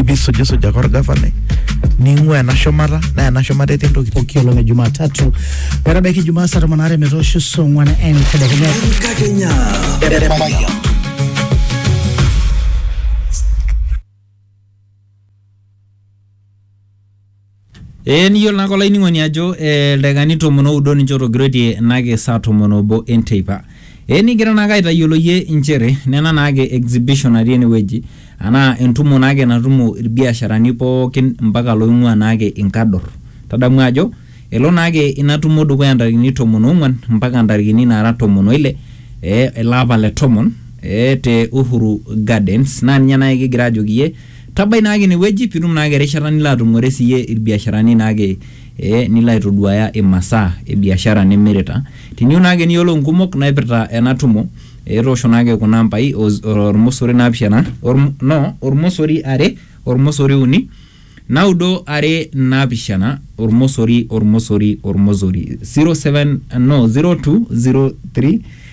ibisujisujaka orgavanai ning'ua ena shumata naa ena shumata etii ntokitin pooki olong e Jumatatu metabaiki Jumaa saa tomon aare metoosho saa ong'wan entedekenya. Enkakenya. Ee niyiolo naake olainining'oni ajo eh, ildaikani tomon oudo ninche otogiroitie enake saa tomon obo enteipa. Ee nikigira naake aitayioloyie inchere nena naake exhibition natii enewueji anaa entumo naake natumo ilbiasharani pookin mpaka looing'uaa naake inkador. Tadamu ajo elo naake ina tumo dukuya ntarikini tomon oong'uan mpaka ntarikini naara tomon oile eh, ele apa le tomon eh, te Uhuru Gardens naa ninye naake kigira aajoki iyie Tabai naake ine wueji pee itum naake erishata nilo atumore siiyie ilbiasharani naake ee nilo aitoduaya imasaa e biashara nimirita. Teniyieu naake niyiolou inkumok naipirta ena tumo ee toosho naake kuna ambai o olmosori naapishana no olmosori are olmosori uni naudo are naapishana olmosori olmosori olmosori 07 no 0203